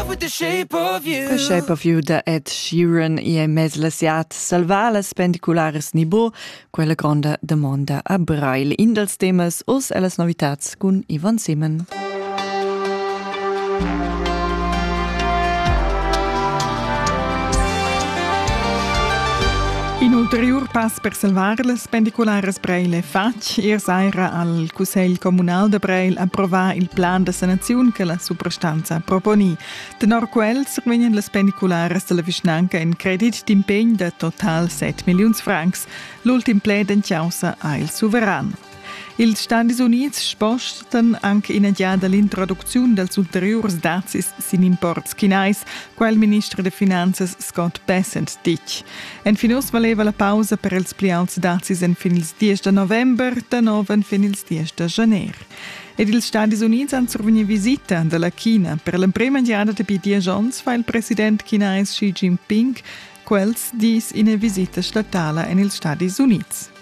The Shape of You da Ed Sheeran e è mez lasiat salvalas pendicularas Nibo, quella gronda damonda a Brail. In dals temas oz è las novitats cun Ivan Simen. Un ulterior pass per salvar las pendicularas Braile fatg Ier saira ha il Cussegl communal da Breil approvà il plan da sanaziun che la suprastanza ha proponì. Tenor quel survegnan las pendicularas dalla vischnanca in credit d'impegn da total 7 milliuns francs. L'ultim pled en causa ha il suveran. Ils Stadis Unids spostatan anche ina giada l'introducziun dals ulteriurs dazis sin imports chinais, qual il minister da finanzas Scott Bessent ditg. Enfin oz valeva la pausa per els pli auts dazis enfin ils 10 da november, da nov enfin ils 10 da januar. Ed ils Stadis Unids han survegnì visita da la China. Per l'emprima giada dapi diesch onns fa il president chinais Xi Jinping quels dis ina visita statala en ils Stadis Unids.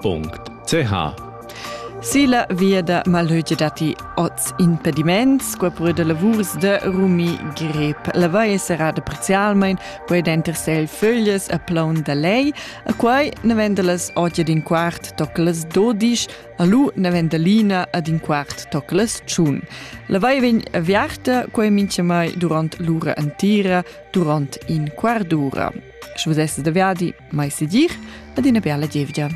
.ch Sila via da malöge datti oz impediments, qua pur da lavurs de rumi grep. La vai è serrada parzialmain, quai denter sel föglies a plaun da lei, a quai ne venda las oggi din quart toc las dodisch, a lu ne venda lina ad in quart toc las tschun. La vai vegn aviarta, quai mincha mai durant l'ura antira, durant in quart d'ura. Sche vus essas da viadi, mai se dir ad ina bella gievgia.